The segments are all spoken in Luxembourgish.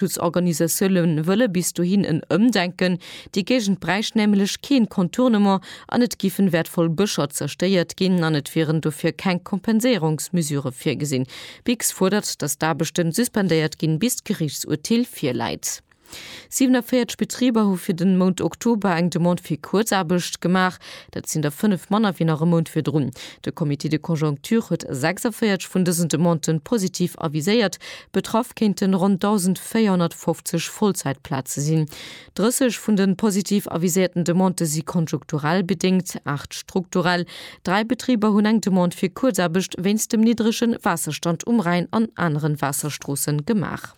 D'Schutzorganisatioune wëlle bis dohin en Ëmdenken. Déi Géigend bräicht nämlech keen Contournement an et giffen wäertvoll Bëscher zerstéiert ginn an et wieren dofir keng Kompenséierungsmesure virgesinn. Bix fuerdert, datt d'Aarbechten suspendéiert ginn, bis d'Geriichtsurteel virläit. 47 Betriber hu fir den Mount Oktober eng Demande fir Kuerzaarbecht gemaach. Dat sinn der fënnef manner wéi nach e Mount virdrun. De Comité de conjoncture huet 46 vun dësen Demanden positiv aviséiert. Betraff kéinten ronn 1.450 Vollzäitplaze sinn. 30 vun den positiv aviséierten Demandë si konjunkturell bedéngt, aacht strukturell. Dräi Betriber hunn eng Demande fir Kuerzaarbecht wéinst dem niddregen Waasserstand um Rhäin an aneren Waasserstroossen gemaach.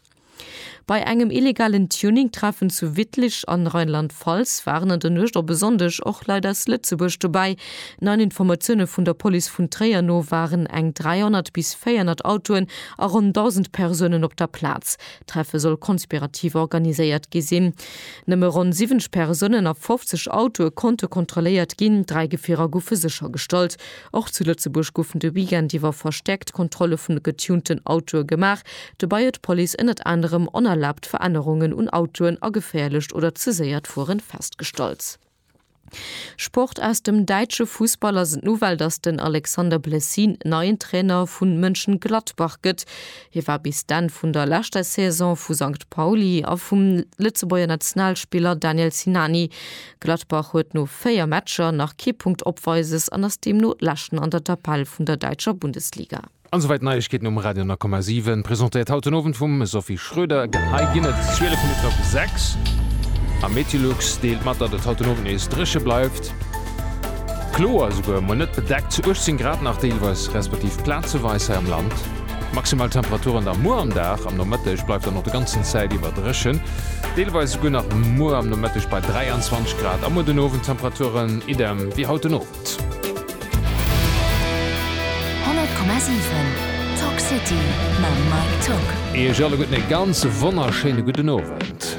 Bei engem illegalen Tuning-Treffen zu Wittlich an Rheinland-Pfalz waren an der Nuecht op e Sonndeg och Leit aus Lëtzebuerg dobäi. Neien Informatioune vun der Police vun Tréier no waren eng 300 bis 400 Autoen a ronn 1.000 Persounen op der Plaz. D'Treffe soll konspirativ organiséiert gi sinn. Nëmme ronn 70 Persounen a 50 Autoe konnte kontrolléiert ginn, dräi Gefierer goufe séchergestallt. Och zu Lëtzebuerg goufen de Weekend iwwer verstäerkt Kontrolle vun de getunten Autoe gemaach. Dobäi huet d'Police ënnert anerem onerlaabt Verännerungen un Autoen a geféierlecht oder ze séiert Fueren festgestallt. Sport Aus dem däitsche Fussball ass et d'Nouvelle, datt den Alexander Blessin neien Trainer vu Mönchengladbach gëtt. Hie war bis d'Enn vun der leschter Saison vu Sankt Pauli a vum Lëtzebuerger Nationalspiller Daniel Sinani Gladbach huet no 4 Matcher nach kee Punkt Opweises an ass deemno Leschten an der Tabell vun der däitscher Bundesliga. An esouwäit d'Neiegkeeten um Radio 9,7, presentéiert haut den Owend vum Sophie Schroeder. Hei ginn et 12 Minutten op 6 a Meteolux deelt mat, datt et haut den Owend nees dréche bleift, kloer esouguer, mol net bedeckt, 18 Grad nach deelweis respektiv plazeweis hei am Land. Maximal Temperaturen da muer am Dag. Am Nomëtteg bleift dann och de ganzen Zäit iwwer dréchen, deelweis esouguer nach muer am Nomëtteg bei 23 Grad a muer den Owend Temperaturen idem wéi haut den Owend. 100,7 Talk City mam Mike Togg. Iech alleguerten ee ganz wonnerschéine gudden Owend.